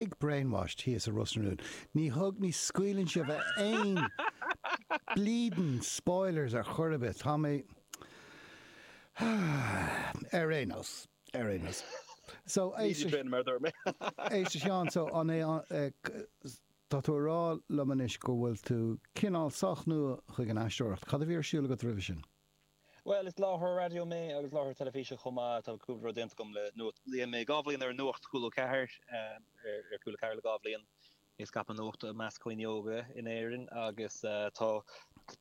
Big brainwash thíos i Ros na Rún. Ní thug, ní scaoileann sibh aon bleedin spoilers ar chor ar bith. Tá mé Ar aon nós, ar aon nós. So, Ní éist a Sheáin, so an é an, tá tú ag rá liom anois go bhfuil tú cineál sách nua chuig an aisteoireacht. Cad a bhí ar siúl agat roimhe sin? Bhuel, is láithreoir raidió mé agus láithreoir teilifíse chomh maith. Tá cúpla rud déanta agam le Nuacht. Léann mé, dhá bhliain ar Nuacht Cúla 4, ar Cúla 4 le dhá bhliain, ag scaipeadh nuachta i measc dhaoine óga in Éirinn agus tá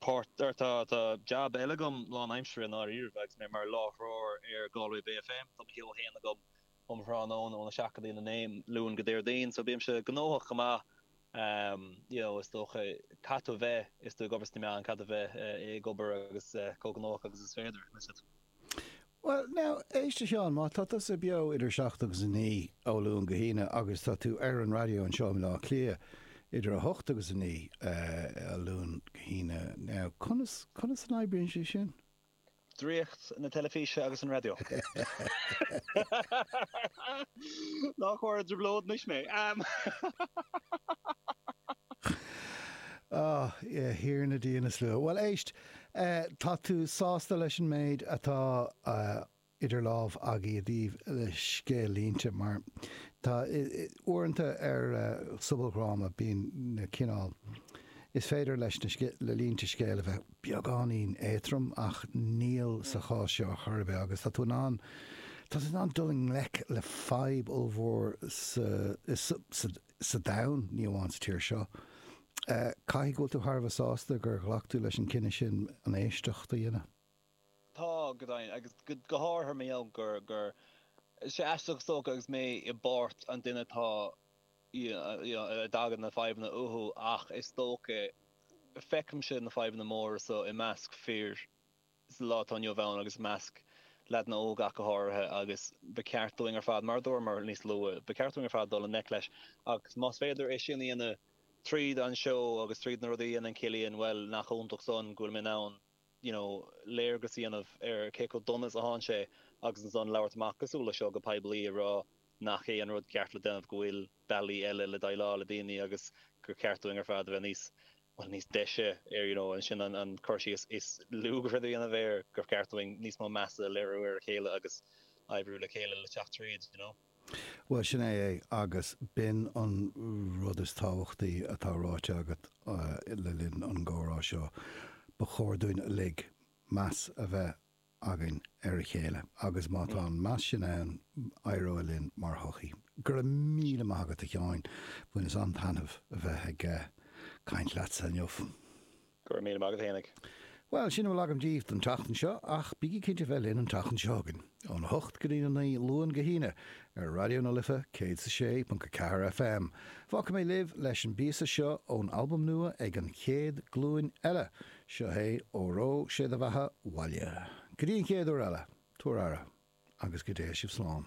páirt, or tá jab, eile agam, lán aimsire i ndáiríribh, agus mé mar láithreoir ar Galway Bay FM. Tá mo sheó féin agam um thráthnóna óna seacht go dtí'n a naoi ó Luan go Déardaoin so bímse gnóthach go maith you know is dócha caithfidh tú a bheith is tú ag obair sna meáin caithfidh tú a bheith ag obair agus chomh gnóthach agus is féidir, that's it. Bhuel now, éist a Sheáin, má tá tusa beo idir a seacht agus a naoi ó Luan go hAoine agus tá tú ar an raidió anseo i mBaile Átha Cliath idir a hocht agus a naoi Luan go hAoine now conas, conas an oibríonn sé sin? Draíocht na teilifíse agus an raidió. Ná cuir i dtrioblóid anois mé! A Thiarna Dia na Slua. Bhuel, éist, tá tú sásta leis an méid atá idir lámha agaibh i dtaobh le scéal-línte mar tá uaireanta ar sobaldhráma bíonn na cineál Is féidir leis na línte scéil a bheith beagáinín éatrom ach níl sa chás seo chor ar bith agus tá tú in ann tá tú in ann dul i ngleic le fadhb ollmhór sa sa domhan, ní amháin sa tír seo. Caithfidh go bhfuil tú thar a bheith sásta gur ghlac tú leis an cinneadh sin an éisteacht a dhéanamh. Tá, go deimhin, agus go háirithe ar mhaithe gur, gur, sé aisteach is dócha agus mé i bpáirt an duine atá, you know, a dtagann na fadhbanna uathu ach is dócha, feicimse na fadhbanna móra so i measc fir sa lá atá inniu ann agus i measc leaideanna óga ach go háirithe agus ba cheart dúinn ar fad, mar a dúramar níos luath, ba cheart dúinn ar fad dul i ngleic leis agus más féidir é sin a dhéanamh tríd an seó agus tríd na rudaí a dhéanann Cillian, bhuel, nach iontach san go bhfuil mé in ann. you know léargas a dhéanamh ar cé chomh dona is a théann sé agus ansan labhairt amach cosúil le seo go poiblí ag rá nach é an rud ceart le déanamh go bhfuil bealaí eile le déileáil le daoine agus gur ceart dúinn ar fad a bheith níos bhuel níos deise ar you know is é sin an an cur síos is lú gur féidir a dhéanamh air gur ceart dúinn níos mó measa a léiriú ar a chéile agus oibriú le chéile le teacht tríd you know. Bhuel, sin é é, agus b'in an rud is tábhachtaí atá ráite agat le linn an gcomhrá seo, ba chóir dúinn uilig meas a bheith againn ar a chéile, agus má tá an meas sin ann, éireoidh linn mar shochaí. Go raibh míle maith agat, a Sheáin, bhaineas an-taitneamh as a bheith ag caint leatsa inniu. Go raibh míle maith agat a Eoin. Bhuel, sin a bhfuil agam díbh don tseachtain seo, ach bígí cinnte a bheith linn an tseachtain seo chugainn, ón 8 go dtí'n 9, Luan go hAoine, ar Raidió na Life 106.4 FM. Fágfaidh mé libh leis an bpíosa seo ón albam nua ag An Chéad Ghlúin Eile, seo é Óró Sé Do Bheatha 'Bhaile. Go dtí an chéad uair eile, tabhair aire, agus go dtéigh sibh slán.